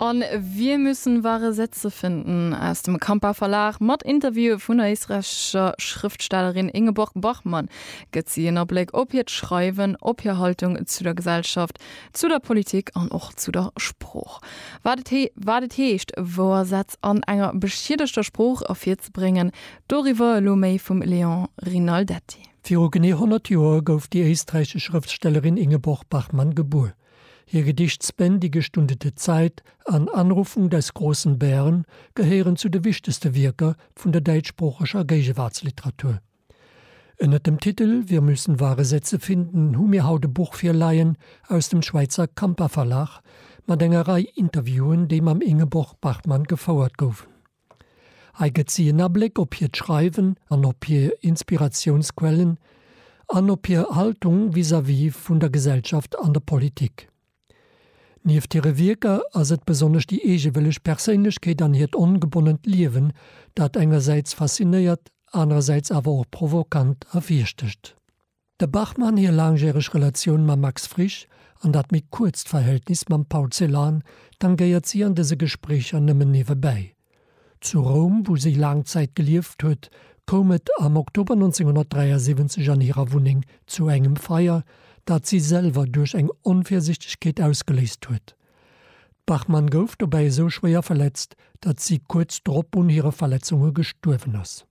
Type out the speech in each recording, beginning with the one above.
An wir müssen wahre Sätze finden aus dem Kampa Verlag mat Interviewen vun der éisträichescher Schrëftstellerin Ingeborg Bachmann gëtt si en Abléck op hiert Schreiwen, op hir Haltung zu der Gesellschaft, zu der Politik an och zu der Sprooch. Wat et heescht, wouer Sätz an enger beschiedegter Sprooch ervirzebréngen, doriwwer elo méi vum Léon Rinaldetti. Viru genee 100 Joer gouf déi éisträichesch Schrëftstellerin Ingeborg Bachmann gebuer. Hir Gedichtspendike Stunde der Zeit an Anrufung des großen Bären gehéieren zu de wichtegste Wierker vun der däitschsproocheger Géigewaartsliteratur. Ënnert dem Titel Wir müssen wahre Sätze finden hu mir haut e Buch virleien aus dem Schwäizer Campa-Verlag mat enger Rei Interviewen, déi mam Ingeborg Bachmann gefouert goufen. Hei gëtt si en Abléck op hiert Schreiwen an op hir Inspiratiounsquellen an op hir Haltung vis-à-vis vun der Gesellschaft an der Politik. Nieft hire Wierker ass et besonnesch déi eegewëlleg Perséinlechkeet an hiert ongebonnent Liewen, dat engersäits faszinéiert, anerersäits awer och provokant ervirstëcht. De Bachmann hir laangjäreg Relatioun mam Max Frisch an dat méi kuerzt Verhältnis mam Paul Celan tangéiert si an dëse Gespréicher nëmmen niewebäi. Zu Roum, wou si laang Zäit gelieft huet, koum et am Oktober 1973 an hirer Wunneng zu engem Feier, dat si selwer duerch eng Onvirsichtegkeet ausgeléist huet. D'Bachmann gouf dobäi esou schwéier verletzt, dat si kuerz drop un hire Verletzunge gestuerwen ass.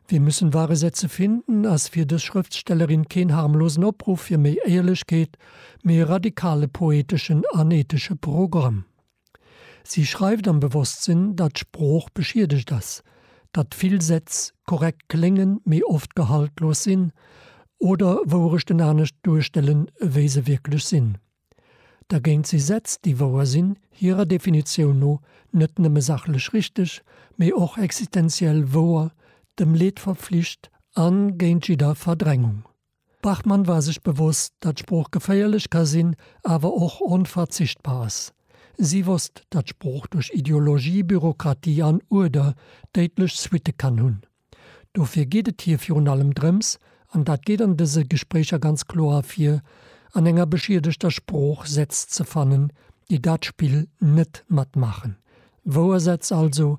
Wir müssen wahre Sätze finden ass fir dës Schrëftstellerin keen harmlosen Opruff fir méi Éierlechkeet, mee e radikale poeteschen an ethesche Programm. Si schreift am Bewosstsinn, datt d'Sprooch beschiedegt ass, datt vill Sätz korrekt kléngen, mee oft gehaltlos sinn oder Wourechten anescht duerstellen, wéi se wierklech sinn. Dergéint si Sätz, déi wouer sinn, hirer Definitioun no net nëmme sachlech richteg, mee och existenziell wouer, dem Leed verpflicht a géint jidder Verdrängung. D'Bachmann war sech bewosst, datt Sprooch geféierlech ka sinn, awer och onverzichtbar ass. Si wosst, datt Sprooch duerch Ideologie, Bürokratie an Uerder déidlech Suitte kann hunn. Dofir geet et hir virun allem drëms, an dat geet an dëse Gespréicher ganz kloer ervir, an enger beschiedegter Sprooch Sätz ze fannen, déi dat Spill net matmaachen. Wouer Sätz also,